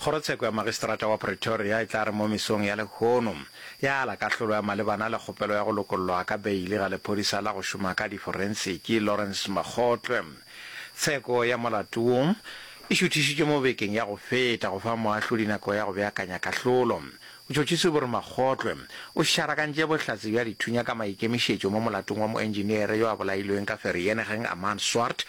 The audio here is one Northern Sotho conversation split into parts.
Kgorotsheko ya Magistrata wa Pretoria e tla re mo mesong ya lehono ya ala kahlolo ya malebana le kgopelo ya go lokollwa ka beili ga lephodisa la go šoma ka diforensiki Lawrence Makgotlwe. Tsheko ya molato wo e šuthišitšwe mo bekeng ya go feta go fa moahlodi nako ya go beakanya kahlolo. Botšhotšhisi bo re Makgotlwe o šarakantše bohlatse bja dithunya ka maikemišetšo mo molatong wa moentšiniere yo a bolailweng ka Vereeniging Amaan Swart,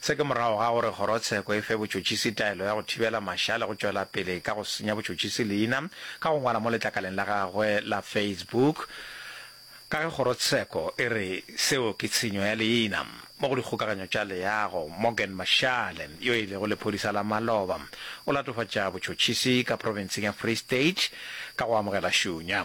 Se ke morago ga gore kgorotsheko e fe botšotšisi taelo ya go thibela mašale go tšwela pele ka go senya botšotšisi leina ka go ngwala mo letlakaleng la gagwe la Facebook ka ge kgorotsheko e re seo ke tshenyo ya leina. Mo go dikgokaganyo tša leago, Morgan Mashale, yo e lego lephodisa la maloba, o latofatša botšotšisi ka profenseng ya Free State ka go amogela šunya.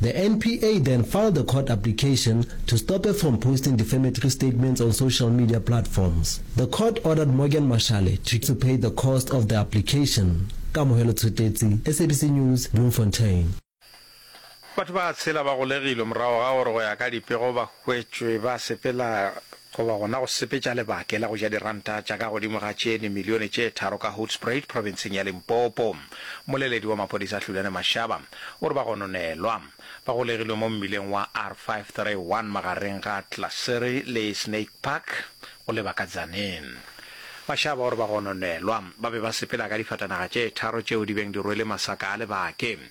The NPA then filed a court application to stop her from posting defamatory statements on social media platforms. The court ordered Morgan Mashale to to pay the cost of the application. Kamohelo Tshwetetsi, SABC News, Bloemfontein. Batho ba tshela ba golegilwe morago ga gore go ya ka dipego ba hwetšwe ba sepela goba gona go sepetša lebake la go ja diranta tša ka godimo ga tše nimilione tše tharo ka Hoedspruit profenseng ya Limpopo. Moleledi wa maphodisa Hlulane Mashaba o re ba gononelwa ba golegilwe mo mmileng wa R531 magareng ga Tlasere le Snake Park go leba ka Tzaneen. Mashaba o re ba gononelwa ba be ba sepela ka difatanaga tše tharo tšeo di beng di rwele masaka a lebake.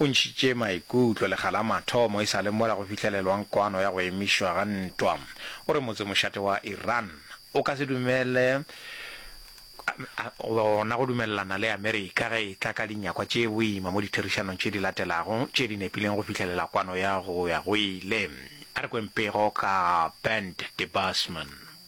O ntšhitše maikutlo lekga la mathomo e sa le mola go fihlelelwang kwano ya go emišwa ga ntwa. O re motse mošate wa Iran o ka se dumele gona go dumelelana le Amerika ge e tla ka dinyakwa tše boima mo ditherišanong tše di latelago tše di nepileng go fihlelela kwano ya go ya go ile. A re kweng pego ka Bernd Debusmann.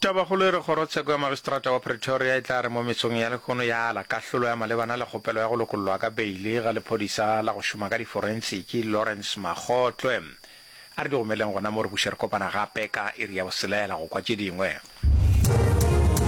Tabakgolo e re kgorotsheko ya magistrata wa Pretoria e tla re mo metsong ya lehono ya ala kahlolo ya malebana le kgopelo ya go lokollwa ka beili ga lephodisa la go šoma ka diforensiki Lawrence Makgotlwe. A re di go meleng gona mo re buše re kopana gape ka iri ya boselela go kwa tše dingwe.